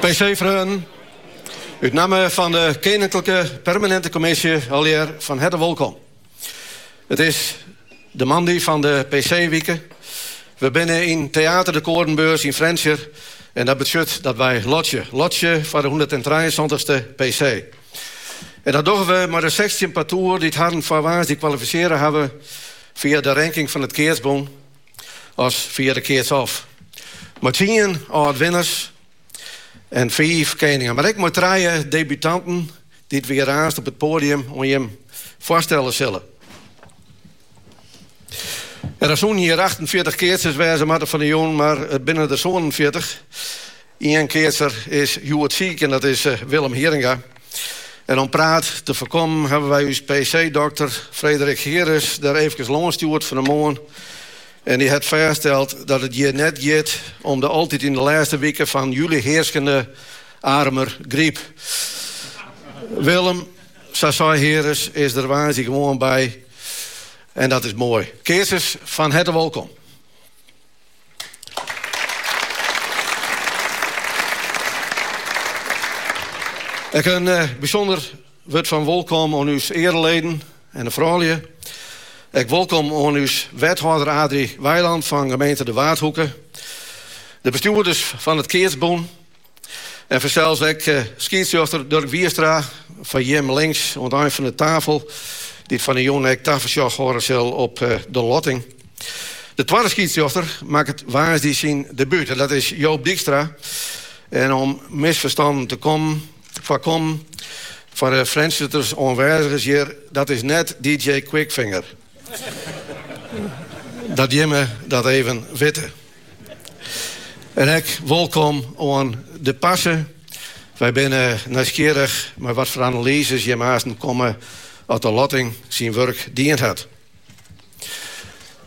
PC-freonen, út namme fan de Keninklike Permanente Commissie allegear fan herte wolkom. It is de moandei fan de PC-wike. We binne yn Teater de Koornbeurs yn Frjentsjer en dat betsjut dat wy lotsje. Lotsje foar de hûndertentrijensantichste PC. En dat dogge we mei de sechstjin partoer dy't harren foar woansdei kwalifisearre hawwe fia de ranking fan it keatsbûn as fia de keats-off. Mei tsien âld-winners en fiif keningen, mar ek mei trije debutanten dy't we hjir aanst op it poadium oan jim foarstelle sille. En der soenen hjir 48 keatsers wêze moatte fan de jûn, mar it binne der sânenfjirtich. Ien keatser is hjoed siik en dat is eh, Willem Heeringa. En om praat te foarkommen hawwe wy ús PC-dokter Frederik Heeres der eefkes lâns stjoerd fan de moarn. En dy hat fêststeld dat it hjir net giet om de altyd yn de lêste wike fan july hearskende Arumer gryp. Willem, Sa sei Heeres is der woansdei gewoan by en dat is moai. Keatsers, fan herte wolkom. Ek in eh, bysûnder wurd fan wolkom oan ús eareleden en de froulju. Ek wolkom oan ús wethâlder Adrie Weiland fan gemeente De Waadhoeke. De bestjoerders fan it Keatsbûn. En fansels ek eh, skiedsrjochter Durk Wierstra foar jimme links oan it ein fan de tafel, dy't fan 'e jûn ek tafersjoch hâlde sil op eh, de lotting. De twadde skiedsrjochter makket woansdei syn debuut en dat is Joop Dykstra. En om misferstannen te kommen, foarkommen foar de Frjentsjerters oanwêzigers hjir, dat is net DJ Quickfinger. dat jimme dat even witte. En ek wolkom oan de parse. Wy binne nijsgjirrich mei wat foar analyzes jim aansten komme as de lotting syn wurk dien hat.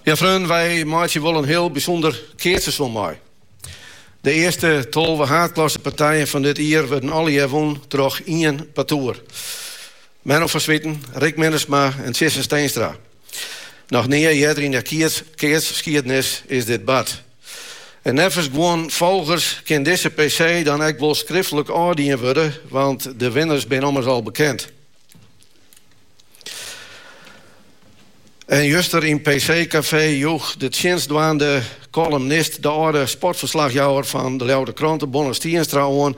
Ja freonen, wy meitsje wol in hiel bysûnder keatseizoen mei. De earste tolve haadklassepartijen fan dit jier wurden allegear wûn troch ien partoer. Menno van Zwieten, Rick Minnesma en Tjisse Steenstra. Noch nea earder yn 'e keatsskiednis is dit bard. En neffens guon folgers kin dizze PC dan ek wol skriftlik ôfdien wurde, want de winners binne ommers al bekend. En juster yn PC Café joech de tsjinstdwaande kolumnist de âlde sportferslachjouwer fan de Ljouwerter Krante, Bonne Stienstra, oan.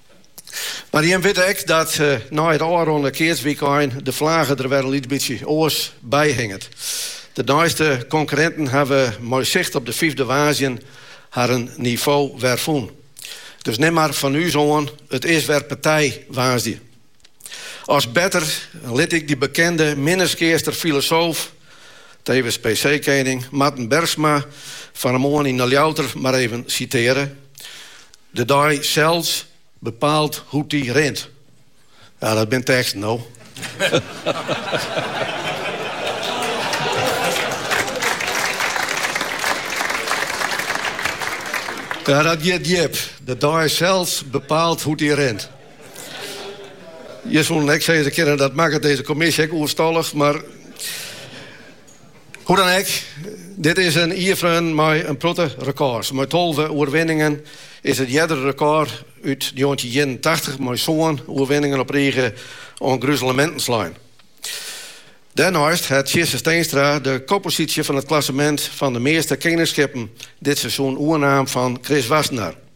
Mar jim witte ek dat nei it ôfronnen keatswykein de flage der wer in lyts bytsje oars by hinget. De neiste konkurrinten hawwe mei sicht op de fyfde woansdei harren nivo wer fûn. Dus nim mar fan ús oan, it is wer partij woansdei. As better lit ik dy bekende Minnertsgeaster filosoof, tevens PC-kening, Marten Bergsma fan 'e moarn yn 'e Ljouwter mar even sitearje, De dei sels bepaalt hoe't dy rint. Ja, dat binne teksten, no. Ja, dat giet djip. De dei sels bepaalt hoe't dy rint. Je soene ek sizze kinne, dat makket deze kommisje ek oerstallich, maar hoe dan ek, dit is in ierfreon mei in protte rekôrs. Mei tolve oerwinningen is het eardere rekôr út 1981 mei sân oerwinningen op rige oan gruzeleminten slein. Dêrneist hat Tjisse Steenstra de kopposysje fan it klassemint fan de measte keningsskippen dit seizoen oernaam fan Chris Wassenaar.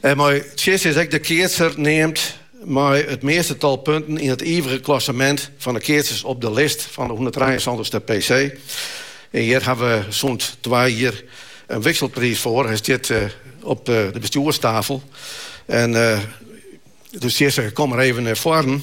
En mei Tjisse is ek de keatser neamd mei it measte tal punten yn it ivige klassemint fan de keatsers op de list fan de hûnderttrijeensantichste PC. En hjir hawwe we sûnt twa jier in wikselpriis foar. Hy stiet op de bestjoerstafel. En dus Tjisse, kom mar even nei foaren.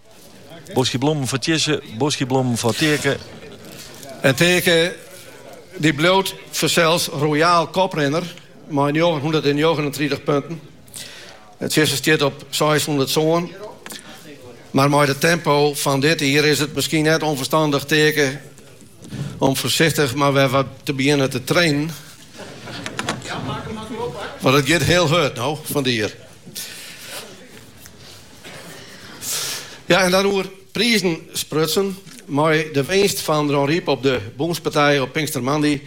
Boskje blommen foar Tjisse, boskje blommen foar Taeke. En Taeke die bliuwt fansels royaal koprinner mei njoggenhûndertnjoggenentritich punten. En Tjisse stiet op seishûndertsân. Mar mei it tempo fan dit jier is it miskien net ûnferstandich Taeke om foarsichtich mar wer wat te begjinnen te trainen. Want it giet hiel hurd no fan de jier. Ja, en dan oer prizen sprutsen. Mei de winst fan Dronryp op de Bûnspartij op Pinkstermoandei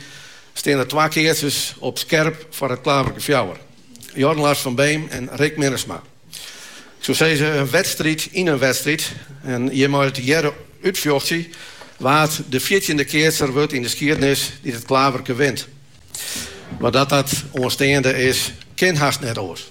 stean der twa keatsers op skerp foar it Klaverke Fjouwer. Jorn Lars van Beem en Rick Minnesma. Ik soe sizze in wedstriid yn in wedstriid. En jim meie it, hearen, útfjochtsje wa't de fjirtjinde keatser wurdt yn de skiednis dy't it Klaverke wint. Mar dat dat oansteande is, kin hast net oars.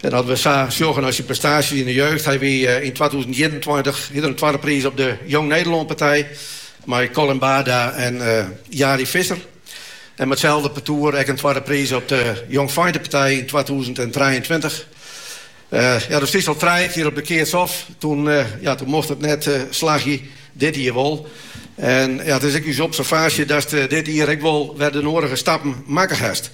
En as we sa sjogge nei syn prestaasjes yn de jeugd, hy wie eh, yn twatûzenienentweintich hie er in twadde priis op de Jong Nederlân partij mei Colin Baarda en eh, Jari Visser. En mei itselde partoer ek in twadde priis op de Jongfeintepartij yn 2023. Eh, ja, dus is al trije kear op de keats ôf. Toen, eh, ja, toen mocht it net eh, slagje, dit jier wol. En ja, it is ek ús observaasje datst dit jier ek wol wer de noadige stappen makke hast.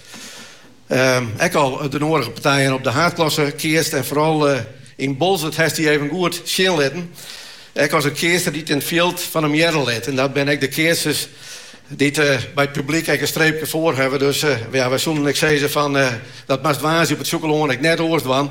Ek al de noadige partijen op de haadklasse keatst en foaral yn Boalsert hast dy even goed sjen litten. Ek as in keatser dy't yn it fjild fan him hearre lit. En dat binne ek de keatsers dy't by it publyk ek in streepke foar hawwe. Dus ja, wy soenen ek sizze fan dat moatst woansdei op It Sjûkelân ek net oars dwaan.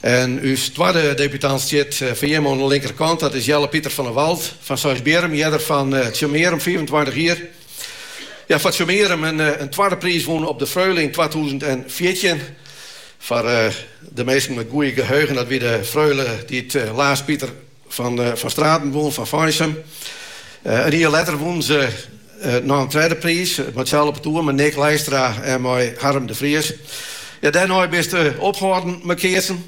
En ús twadde debutant stiet foar jimme oan de linkerkant. Dat is Jelle Pieter van der Walt fan Seisbierrum, earder fan Tsjummearum, fiifentweintich jier. Ja, foar Tsjummearum in twadde priis wûn op de Freule yn twatûzen en fjirtjin. Foar de minsken mei it goede geheugen, dat wie de Freule dy't Laas Pieter van Straten wûn fan Feinsum. In jier letter wûnen se noch in tredde priis, mei itselde partoer, mei Nick Leistra en mei Harm de Vries. Ja, dêrnei bist ophâlden mei keatsen.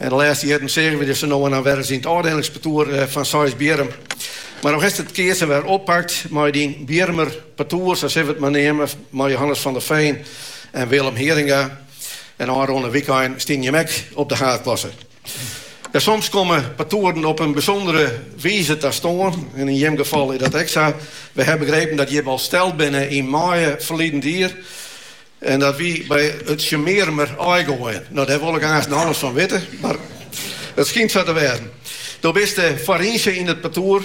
En de lêste jierren seagen we dy sa no en dan wer ris yn it ôfdelingspartoer fan Seisbierrum. Mar no hast it keatsen wer oppakt mei dyn Bjirmer partoer, sa sille we it mar neame, mei Johannes van der Veen en Willem Heeringa. En ôfrûne wykein stienen jimme ek op de haadklasse. Ja, soms komme partoeren op in bysûndere wize ta stân en yn jim gefal is dat ek sa. Wy ha begrepen dat jim al steld binne yn maaie ferliden jier en dat wie by it Tsjummearumer aaigoaien. No, dêr wol ik aansen alles fan witte, mar it skynt sa te wêzen. Do bist de foarynse yn it partoer.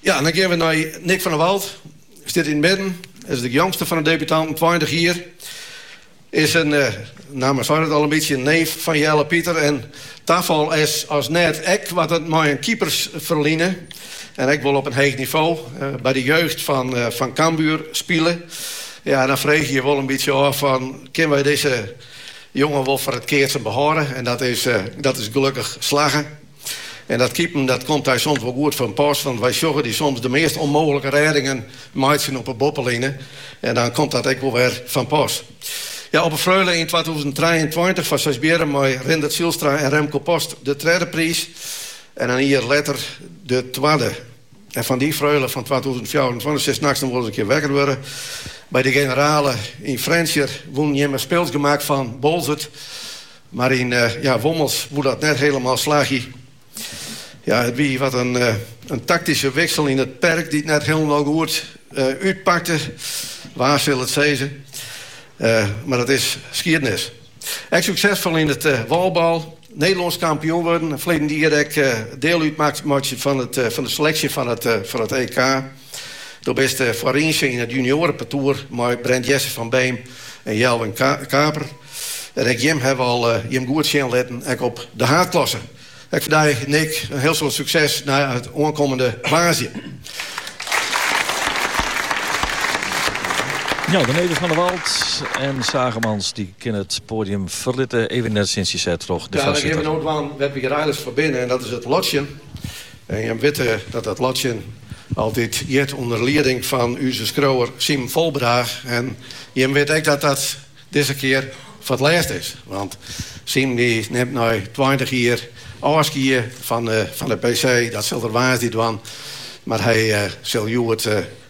Ja, dan gean we nei Nick van der Walt. Stiet yn it midden. Is de jongste fan de debutanten, 20 jier. Is in, eh, namme seit it al in bytsje, neef fan Jelle Pieter. En tafal is as net ek wat er mei in keepersferline. En ek wol op in heech nivo. By de jeugd fan, fan Cambuur spile. Ja, en dan freegje je wol in bytsje ôf fan, kin wy dizze jongen wol foar it keatsen behâlde? En dat is, dat is gelukkig slagge. En dat keepen, dat komt dy soms wol goed fan pas, want wy sjogge dy soms de meast ûnmooglike rêdingen meitsjen op 'e boppeline. En dan komt dat ek wol wer fan pas. Ja, op 'e Freule yn twatûzen trijeentweintich foar Seisbierrum mei Rindert Zijlstra en Remco Post de tredde priis. En in jier letter de twadde. En fan dy Freule fan twatûzen fjouwerentweintich silst nachts noch wol ris in kear wekker wurde. By de generale yn Frjentsjer wûn jim mei spylsk gemak fan Boalsert. Mar yn Wommels woe dat net hielendal slagje. Ja, it wie wat in taktyske wiksel yn it perk dy't net hielendal goed útpakte. Wa sil it sizze? Mar dat is skiednis. Ek suksesfol yn it wallball, Nederlânsk kampioen wurden en ferleden jier ek diel útmeitsje fan de seleksje fan it EK. Do bist foarynse yn it junioarenpartoer mei Brent Jesse van Beem en Jelvin Kaper. En ek jim hawwe al jim goed sjen litten, ek op de haadklasse. Ek foar dy Nick in hiel soad sukses nei oankommende woansdei. Jo, de neven Van der Walt en Zaagemans dy kinne it poadium ferlitte. Even net sinds je sêd troch de foarsitter. Ja, dan gean we no dwaan wêr't we hjir eigentlist foar binne en dat is it lotsjen. En jimme witte dat dat lotsjen altyd giet ûnder lieding fan ús skriuwer Simon Volbeda. En jimme witte ek dat dat dizze kear foar it lêst is. Want Simon dy nimt nei tweintich jier ôfskie fan de PC. Dat sil er woansdei dwaan. Mar hy sil hjoed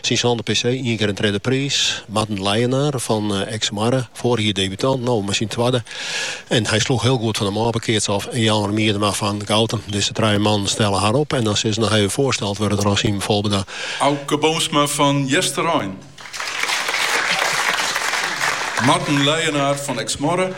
Syn sânde PC, ien kear in tredde priis. Marten Leijenaar fan Eksmoarre, foarige jier debutant, no mei syn twadde. En hy sloech hiel goed fan de mâpekeats ôf en Jelmer Miedema fan Goutum. Dizze trije mannen stelle har op en dan sil se noch even foarsteld wurde troch Simon Volbeda. Auke Boomsma fan Easterein. Marten Leijenaar fan Eksmoarre.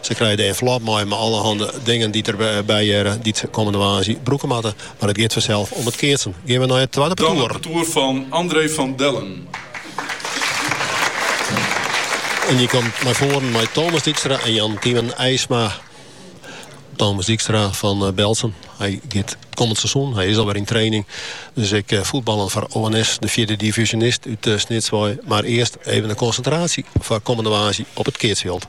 Se krije de envelop mei mei allerhande dingen dy't der by hearre, dy't se kommende woansdei brûke moatte. Mar it giet fansels om it keatsen. Gean we nei it twadde partoer. Dan it partoer fan André van Dellen. En dy komt nei foaren mei Thomas Dijkstra en Jan Tymen Eisma. Thomas Dijkstra fan eh, Berltsum. Hy giet kommend seizoen, hy is alwer yn training. Dus ek eh, fuotbaljen foar ONS, de fjirde divyzjonist út eh, Snits wei. Mar earst even de konsintraasje foar kommende woansdei op it keatsfjild.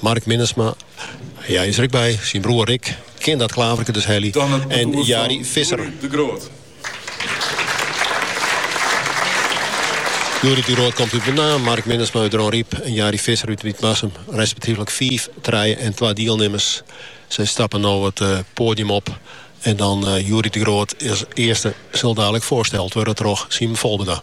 Mark Minnesma, hy is er ek by, syn broer Rick, kin dat klaverke dus helje, en Jari Visser. Youri de Groot komt út Menaam, Mark Minnesma út Dronryp en Jari Visser út Wytmarsum. Respektyflik 5, 3 en 2 dielnimmers. Se stappe no it eh, poadium op. En dan eh, Youri de Groot as earste sil dadelik foarsteld wurde troch Simon Volbeda.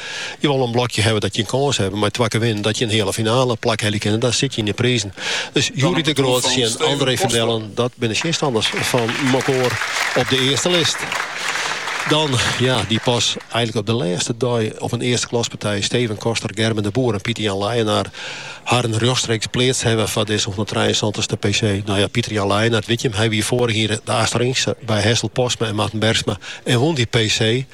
Je wol in blokje hawwe dat je in kâns hawwe mei twa kear winnen dat je in heale finale plak helje kinne. Dan sit je yn de prizen. Dus Youri de Groot en André van Dellen, dat binne tsjinstanners fan mekoar op de earste list. Dan, ja, dy't pas eigentlik op de lêste dei op in earste klaspartij Steven Koster, Gerben de Boer en Pieter Jan Leijenaar harren rjochtstreeks pleatst hawwe foar dizze 173ste PC. No ja, Pieter Jan Leijenaar, witte jim, hy wie foarich jier de achterynse by Hessel Postma en Marten Bergsma en wûn dy PC.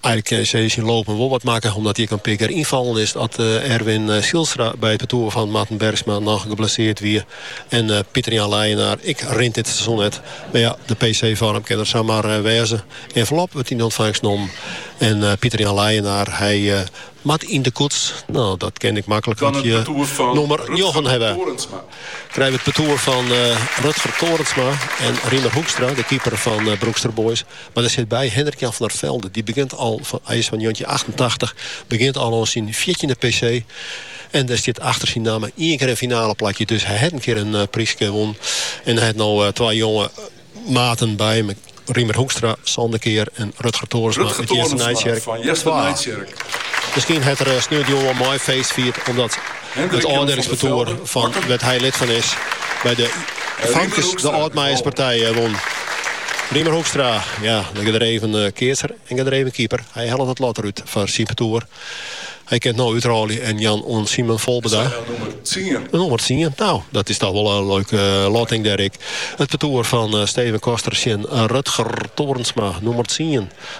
Erik Kees is yn Lopum wol wat makke omdat hy ek in pear kear ynfallen is as Erwin Zijlstra by it partoer fan Marten Bergsma noch geblesseard wie en Pieter-Jan Leijenaar ek rint dit seizoen net. Mar ja, de PC-foarm kin der sa mar wêze. Envelop wurdt yn ûntfangst nommen en Pieter-Jan Leijenaar hy moat yn de koets. No, dat kin ek maklik at je nûmer njoggen hawwe. Krije we it partoer fan Rutger Torensma en Riemer Hoekstra, de keeper fan Broekster Boys. Mar der sit by, Hendrik-Jan van der Velde, dy begjint al, hy is fan njoggentjin achtentachtich, begjint al oan syn fjirtjinde PC en der stiet achter syn namme ien kear in finaleplakje. Dus hy hat in kear in pryske wûn en hy hat no twa jonge maten by him, Riemer Hoekstra, sânde kear en Rutger Torensma fan Easternijtsjerk. Miskien hat er sneontejûn wol mei feest fierd omdat. It ôfdelingspartoer fan wêr't hy lid fan is by de famkes de Ald Meierspartij wûn. Riemer Hoekstra, ja, gedreven keatser en gedreven keeper. Hy hellet it lot derút foar syn partoer. Hy kin it no útrôlje en jaan oan Simon Volbeda. Nûmer tsien. Nou, dat is toch wol in leuke lotting dêr ek. It partoer fan Steven Koster tsjin Rutger Torensma, nûmer tsien.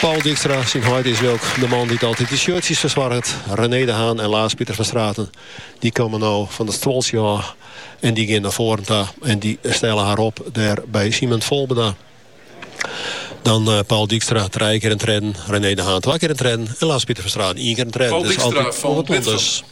Paul Dijkstra, syn heit is Wilk, de man dy't altyd de shirtsjes fersoarget, René de Haan en Laas Pieter van Straten. Dy komme no fan it stuoltsje ôf en dy gean nei foaren ta en dy stelle har op dêr by Simon Volbeda. Dan eh, Paul Dijkstra trije kear in tredden, René de Haan twa kear in tredden en Laas Pieter van Straten ien kear in tredden. Paul Dijkstra fan Bitgum.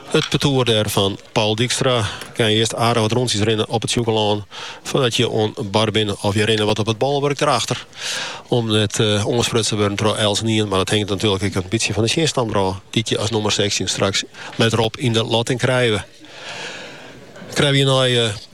It partoer dêr fan Paul Dijkstra kin earst aardich wat rûntsjes rinne op it Sjûkelân foardat je oan bar binne of je rinne wat op it bolwurk derachter om net oansprutst te wurden troch eltsenien, mar dat hinget natuerlik ek in bytsje fan de tsjinstanner ôf dy't je as nûmer sechstjin straks letter op yn de lotting krije. Krije je nei.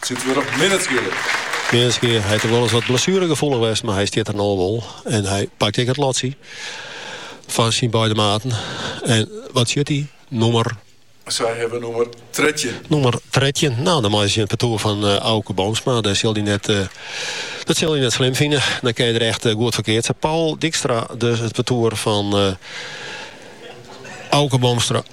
Sit wer op middenskealing. Middenskealing hat er wolris wat blessueregefoelich west, mar hy stiet der no wol en hy pakt ek it lotsje fan syn beide maten. En wat sjocht hy? Nûmer. Sy hawwe nûmer trettjin. Nûmer trettjin. Nou, dan meie se tsjin it partoer fan uh, Auke Boomsma. Dat sil hy net, uh, dat sil hy net slim fine. Dan kin je der echt uh, goed foar keatse. Paul Dijkstra, dus it partoer fan... Uh, Auke Boomstra,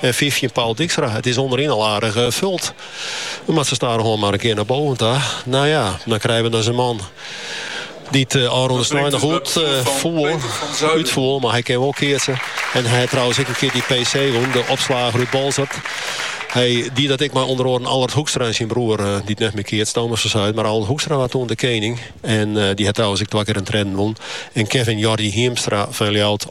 En fyftjin Paul Dijkstra. It is ûnderyn al aardich fuld. Dan moatte we stadichoan mar in kear nei boven ta. No ja, dan krije we dus in man dy't ôfrûne snein noch útfoel. Mar hy kin wol keatse. En hy hat trouwens ek in kear dy PC wûn, de opslager út Boalsert. Hy die dat ek mei ûnder oaren Allard Hoekstra en syn broer, dy't net mear keatst, Thomas van Zuiden. Mar Allard Hoekstra waard toen de kening. En dy hat trouwens ek twa kear in tredden wûn. En Kevin Jordi Hiemstra fan Ljouwert.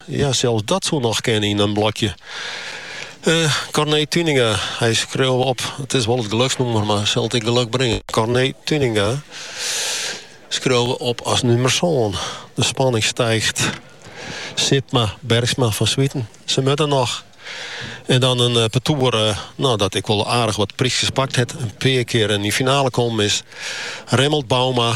Ja, sels dat soe noch kinne yn in blokje. Uh, Corné Tuinenga, dy skriuwe we op, it is wol it geluksnûmer, mar sil it ek geluk bringen. Corné Tuinenga skriuwe we op as nûmer sân. De spanning stiicht. Sipma, Bergsma, Van Zwieten, se moatte der noch. En dan in uh, partoer uh, nou, dat ek wol aardich wat pryskes pakt hat. In pear kear yn de finale kommen is. Remmelt Bouma,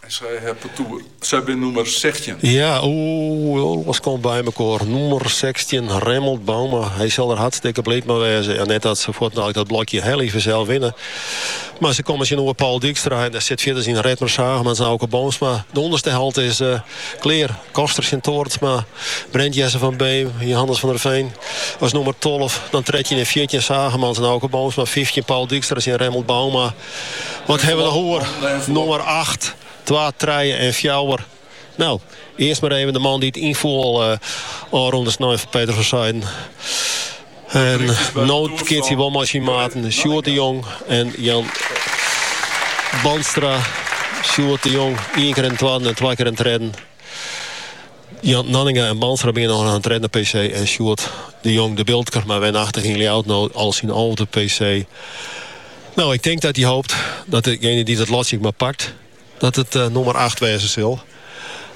En sy hat de toer. Sy bin nûmer sechstjin. Ja, oeh, alles komt by mekoar. Nûmer sechstjin, Remmelt Bouma. Hy sil der hartstikke bliid mei wêze. Ja, net dat se fuortnei dat blokje hiel even sels winne. Mar se komme tsjinoer Paul Dijkstra en dêr sit fierders yn Redmer Zaagemans en Auke Boomsma. De ûnderste helte is uh, klear. Koster tsjin Torensma, Brent Jesse van Beem, Johannes van der Veen as nûmer 12. Dan 13 en 14 Zaagemans en Auke Boomsma, 15 Paul Dijkstra en Remmelt Bouma. Wat hawwe we noch oer? Nûmer acht, twa, trije en fjouwer. Nou, earst mar even de man dy't ynfoel uh, ôfrûne snein foar Peter van Zuiden. En no keatst hy wol mei syn maten Sjoerd de Jong en Jan Bandstra. Sjoerd de Jong, ien kear in twadde en twa kear in tredde. Ja, Nanninga en Bandstra binne no oan 'e tredde PC en Sjoerd de Jong de Biltker, mar wenachtig yn Ljouwert no al syn alfde PC. Nou, ik tink dat hy hopet dat dejinge dy't dat lotsje maar pakt, dat it uh, nûmer 8 wêze sil.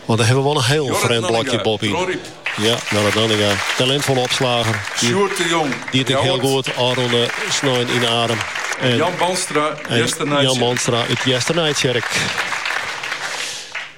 Want dan hawwe we wol in hiel frjemd blokje boppe-yn. Ja, Jorrit Nanninga. Talintfolle opslagger. Sjoerd de Jong. Die it hiel goed ôfrûne snein yn Arum. En Jan Bandstra, Jan Bandstra út Easternijtsjerk.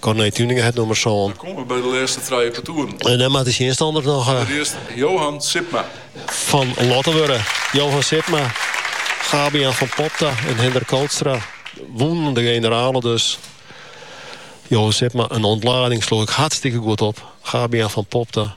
Corné Tuinenga hat nûmer sân. Dan komme we by de lêste trije partoeren. En dan moat de tsjinstanner noch. Allerearst Johan Sipma. Fan lotte wurde. Johan Sipma, Gabe-Jan van Popta en Hendrik Kootstra wûnen de generale dus. Johan Sipma, in ûntlading, sloech ek hartstikke goed op. Gabe-Jan van Popta,